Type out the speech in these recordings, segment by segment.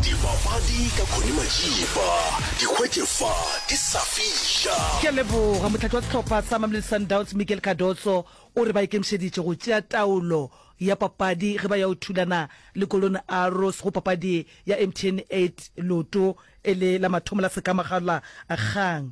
dibapadi ka khone majipa dikgwete fa di sa fiša ke a leboga motlhatlo wa setlhopha sa mamelodi sundowns miguel cardoso o re ba ikemišeditše go tšea taolo ya papadi ge ba ya o thulana le golden arrows go papadi ya mtn 8 loto e le la mathomo la sekamagala kgang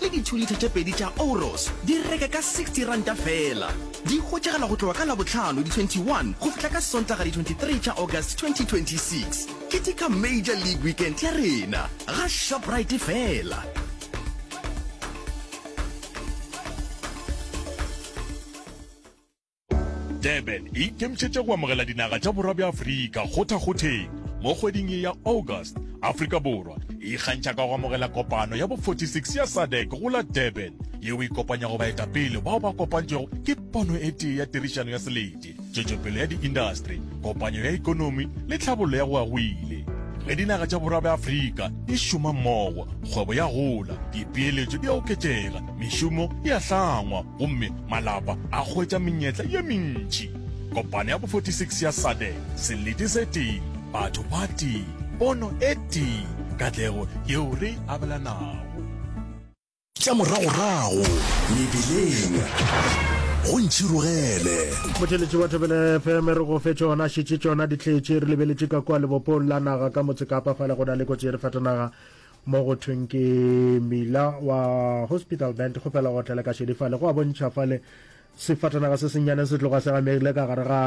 le ditšhulitha tše pedi tša Ouros di reke ka R60 feela. Di hwetšagala go tloga ka Labohlano di 21 go fihla ka Sontaga di 23 tša August 2026. Ketika Major League Weekend ya rena ga Shoprite feela. Durban e ikemišetše go amogela dinaga tša borwa bja Afrika kgothakgotheng. Mo kgweding ye ya August, Afrika Borwa e ikgantšha ka go amogela kopano ya bo 46 ya SADC go la Durban, yeo e kopanyago baetapele bao ba kopantšwego ke pono e tee ya tirišano ya selete, tšwetšopele ya diindastri, kopanyo ya ekonomi le tlhabollo ya go agwile. Ge dinaga tša borwa bja Afrika di šoma mmogo, kgwebo ya gola, dipeeletšo di a oketšega Mešomo e a hlangwa gomme malapa a hwetša menyetla ye mentši. Kopano ya bo 46 ya SADEC, selete se tee, batho ba tee, pono e tee, katlego yeo re e abelanago. Tša moragorago mebeleng go ntšhirogele. Motšheletši wa Thobela FM re go fe tšona šetše tšona ditletše re lebeletše ka kua lebopong la naga ka motse Kapa fale go na le kotsi e re fatanaga mo go thweng ke mila wa hospital band go fela go tlele ka šedifale go a bontšha fale sefatanaga se senyane se tloga se gamegile ka gare ga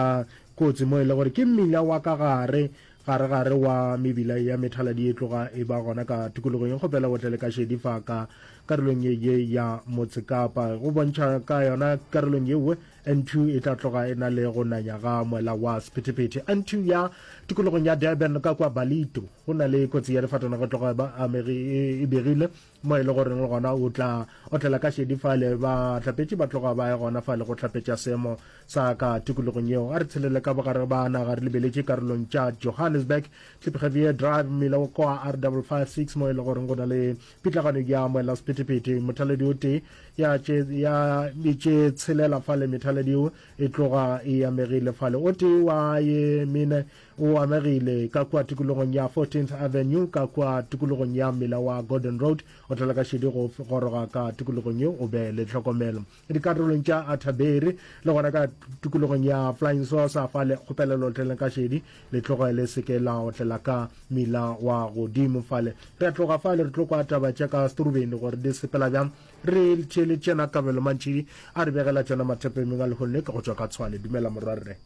kotsi mo e le gore ke mmila wa ka gare gare gare wa mebila ya methaladi e tloga e ba gona ka tikologong go fela go tlele ka šedifaka karolong ye ye ya motsekapa go bontšha ka yona karolong yewe Antu e tla tloga e na le go nanya ga moela wa sephethephethe. Antu ya tikologong ya Durban ka kwa Ballito go na le kotsi ya difatanaga e tloga ba amegi e, e begile mo e le goreng le gona o tla otlela ka šedi fale bahlapetši ba tloga ba ye gona fale go hlapetša seemo sa ka tikologong yeo. A re tshelele ka bogare ba naga re lebeletše karolong tša Johannesburg, Klipgevier Drive, mmila wa kwa R556 mo e le goreng go na le Pitlagano ya moelasephethephethe, mothaladi o tee ya tše ya tše tshelela fale, methaladi yeo e tloga e amegile fale. O tee wa ye mene o amegile ka kua tikologong ya 14th Avenue, ka kua tikologong ya mmila wa Gordon Road. O tlala ka šedi go goroga ka tikologong yeo, o be le tlhokomelo. dikarolong tša athaberi le gona ka tukulogong ya flying saucer fa le kgopelelo otleleng ka šedi le tloge le seke la otlela ka mila wa godimo fale re a tloga fale re tlo kwa taba tša ka setorubeni gore di sepela bjang re tšele tšena kabelo mantšhidi a re begela tšona mathepemeng a lehono ke go tšwa ka tshwane dumela morwarre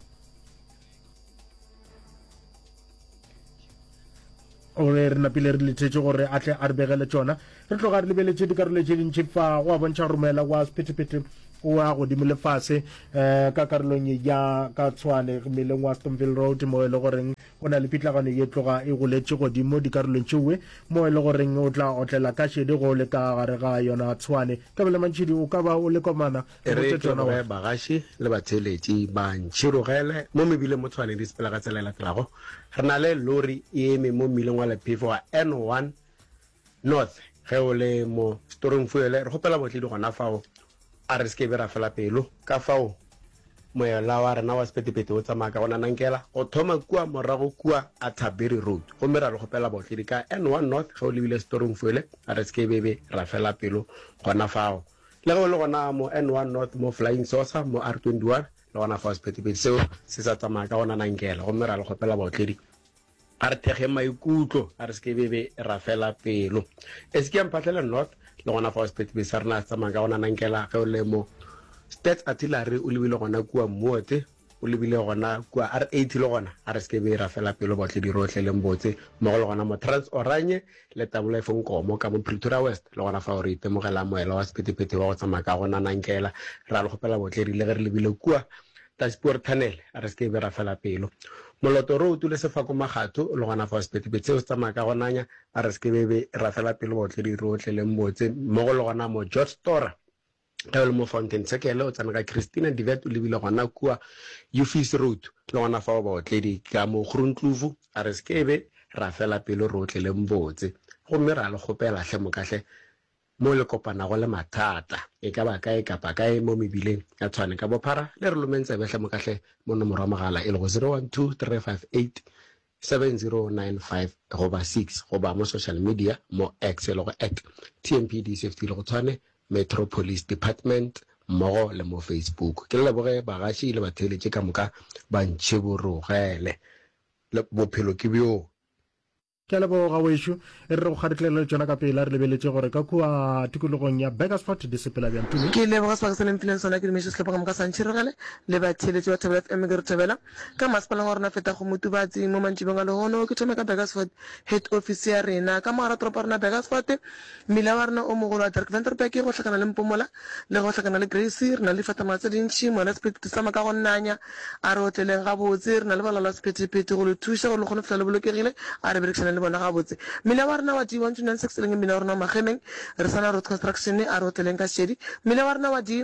gore re napile re lethetše gore a tle a re begele tsona re tloga re lebeletše dikarolo tše dintši fa go a bontšha gore moela wa sephetephete o ya godimo le fase um ka karolong ya ka tshwane mmeleng wa stonville road mo e le goreng go na le pitlagano ye tloga e goletše godimo dikarolong tšeoe mo e le goreng o tla otlela ka šedi go le ka gare ga yona tshwane kabele mantšhidi o ka ba o le komana E re ke gore bagaši le batheeletši ba ntšhirogele mo mebileng mo Tshwane di sepela ka tsela e latelago. Re na le lori e eme mo mmileng wa lephefo wa N1 North. Ge o le mo storong fuele, re kgopela botledi gona fao a re se ke be ra fela pelo. Ka fao moela wa rena wa sepetepete o tsamaya ka go nanankela go thoma kua morago kua Atterbury Road gomme ra le kgopela botledi ka N1 North ge o lebile storong fuele a re se ke be be ra fela pelo gona fao. Le ge o le gona mo N one North mo Flying Saucer mo R twenty one le gona fao sephethephethe seo se sa tsamaya ka gona nankela gomme ra le kgopela baotledi a re thekge maikutlo a re seke bebe ra fela pelo Eskiang Phatlele North le gona fao sephethephethe sa rena se tsamaya ka gona nankela ge o le mo Stats Artillery o lebile gona kua Mmuote O lebile gona kua R80 le gona a re seke be ra fela pelo baotledi rohle leng botse mmogo le gona mo Trans Oranje le Tabula Efong Nkomo ka mo Pretoria West le gona fao re itemogela moela wa sephethephethe wa go tsamaya ka go nanankela ra le kgopela baotledi le ge re lebile kua Daspoort Tunnel a re seke be ra fela pelo moloto re o tule sefako magatho le gona fao sephethephethe seo se tsamaya ka go nanya a re seke be ra fela pelo baotledi rohle leng botse mmogo le gona mo George Tora ge o le mo fountain circle o tsena ka christina divet o lebile gona kua ufis road le gona fa o baotledi ka mo kgorontlufu a re sekebe ra fela pelo re otleleng botse gomme ra le kgopela hle mokahle mo le kopanago le mathata e ka ba kae kapa kae mo mebileng ya tshwane ka bophara le re lomeng tsebe hle mokahle mo nomoro ya mogala e lego 012358 7095 goba 6 goba mo social media mo X e lego at TMPD50 le go tshwane Metro Police Department mmogo le mo Facebook. Ke le leboge bagaši le batheeletši ka moka ba ntšhiborogele. Le, bophelo ke bjoo. Ke a leboga, wešu. E re re go kgaditlelele tšona ka pela re lebeletše gore ka kua tikologong ya Burgersfort di sepela bjang. Tumi. Ke leboga sebaka se le mphileng sona. Ke dumeše sehlopa ka moka sa ntšhirogele le batheeletši ba Thobela FM. Ke re thobela. Ka masepaleng wa rona feta go Motubatsi mo mantšibeng a lehono, ke thome ka Burgersfort, head office ya rena. Ka mogara toropo ya rona Burgersfort, mmila wa rena o mogolo wa Dirk-Venterbeke go hlakana le Mpomola le go hlakana le Grace. Re na le difatamaga tse dintši, moya la sephethephethe sa moka go nanya. A re otleleng gabotse, re na le balaola la sephethephethe go le thuša gore le kgone go fihla le bolokegile. A re berekišaneng le bona gabotse. Mmila wa rena wa di 1296 e leng mmila wa rona wa Magemeng, re sa na Road Construction. A re otleleng ka Šedi, mmila wa rena wa di.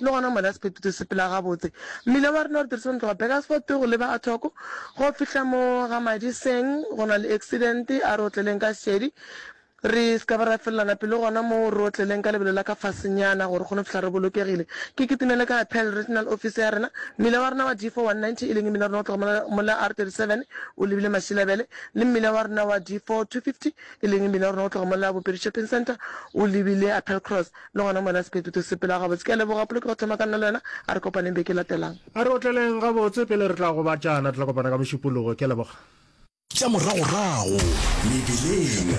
Le gona mola sephetho se sepela gabotse. Mmila wa rena o re dirisa go tloga Burgersfort go leba Athoco go fihla mo ga Madiseng. Go na le accident, a re otleleng ka šedi re se ka ba ra felelana pelo gona moo, re otleleng ka lebelo la ka fasenyana gore re kgone go fihla re bolokegile. Ke kitimele ka ya Pearl Regional Office ya rena. Mmila wa rena wa D4 190, e leng mmila wa rena go tloga mola, mola R37 o lebile Mashilabele, le mmila wa rena wa D4 250, e leng mmila wa rena go tloga mola Bopedi Shopping Centre o lebile Appelcross. Le gona moena Sepetu to sepela gabotse. Ke a leboga Poloki go thoma ka nna le wena. A re kopaneng beke e latelang. A re otleleng gabotse pele re tla gobatšana. Re tla kopana ka Mošupologo. Ke a leboga. Tša moragorago mebeleng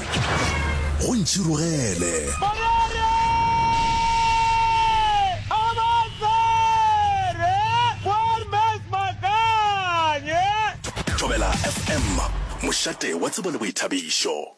go ntšhirogele. Morere a ba tsere Poor Max Makanye. Thobela FM, mošate wa tsebo le boithabišo.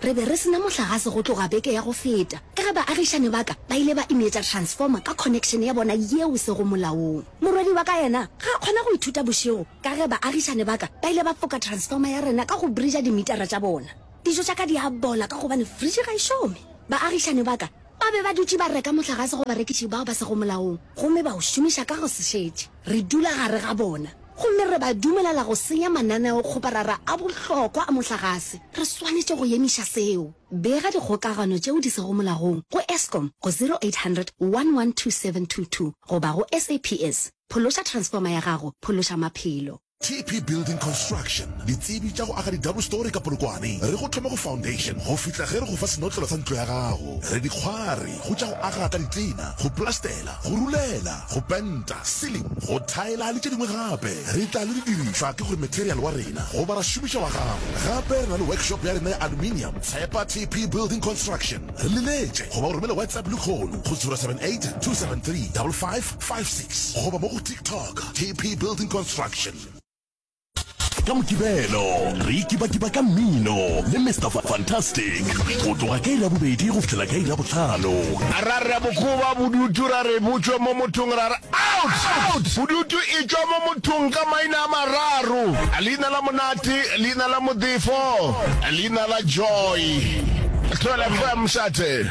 Re be re se na mohlagase go tloga beke ya go feta ka ge baagišani ba ka ba ile ba imetša transformer ka connection ya bona yeo e sego molaong. Morwedi wa ka yena ga a kgona go ithuta bošego ka ge baagišani ba ka ba ile ba foka transformer ya rena ka go bridger dimitara tša bona. Dijo tša ka di a bola ka gobane fridge ga e šome. Baagišani ba ka ba be ba dutše ba reka mohlagase go barekiši bao ba sego molaong gomme ba o šomiša ka go se šetše. Re dula gare ga bona gomme re ba dumelela go senya mananeokgoparara a bohlokwa a mohlagase. Re swanetše go emiša seo. Bega dikgokagano tšeo di sego molagong go Eskom go 0800 112722 goba go SAPS. Phološa transformer ya gago, phološa maphelo. TP Building Construction, ditsebi tša go aga di-double story ka Polokwane. Re go thoma go foundation go fihla ge re go fa senotlelo sa ntlo ya gago. Re dikgwari go tša go aga ka ditlina, go plastela, go rulela, go penta, sealing, go thaela le tše dingwe gape. Re tla le didirišwa ke gore material wa rena goba ra šomiša wa gago. Gape re na le workshop ya rena ya aluminium. Tshepa TP Building Construction. Re le letše goba o romele WhatsApp lehono go 078 273 5555. 56 goba mo go TikTok, TP Building Construction. Ka Mokibelo re ikibakiba ka mmino le Mister Fantastic go tloga ka iri ya bobedi go fihlela ka iri ya bohlano. Ra re bokoba bodutu ra re bo tšwe mo mothong ra re out! Out! Bodutu e tšwa mo mothong ka maina a mararo, leina la Monate, leina la Modifo, leina la Joy. Tlhola fm, Mshathe.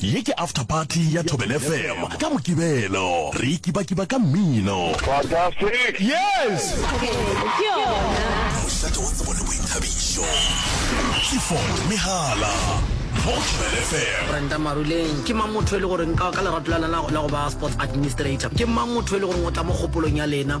Ye ke After Party ya Thobela FM ka Mokibelo. Re ikibakiba ka mmino. Fantastic! Yes! Ke yona. Mošate wa tsebo le boithabišo. Clifford Mehala mo Thobela FM. Brenda Maruleng ke mang motho e le goreng ka ka lerato la lena la go ba sports administrator ke mang motho e le goreng o tla mo kgopolong ya lena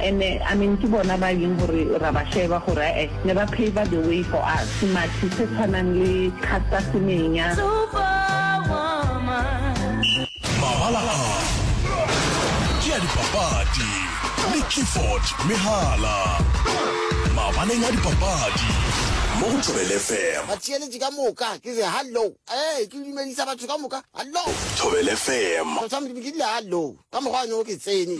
And I mean ke bona ba yeng gore ra ba šeba gore ae ne ba paver the way for us semathi se tshwanang le Caster Semenya. Mabala a ke a dipapadi le Clifford Mehala mabaleng a dipapadi mo go Thobel FM. Batheeletši ka moka ke re hallo. Ee, ke dumedisa batho ka moka. Hallo. Thobel FM. Tshwantšha Modimo ke dile hallo. Ka mokgwa one o ke tsene.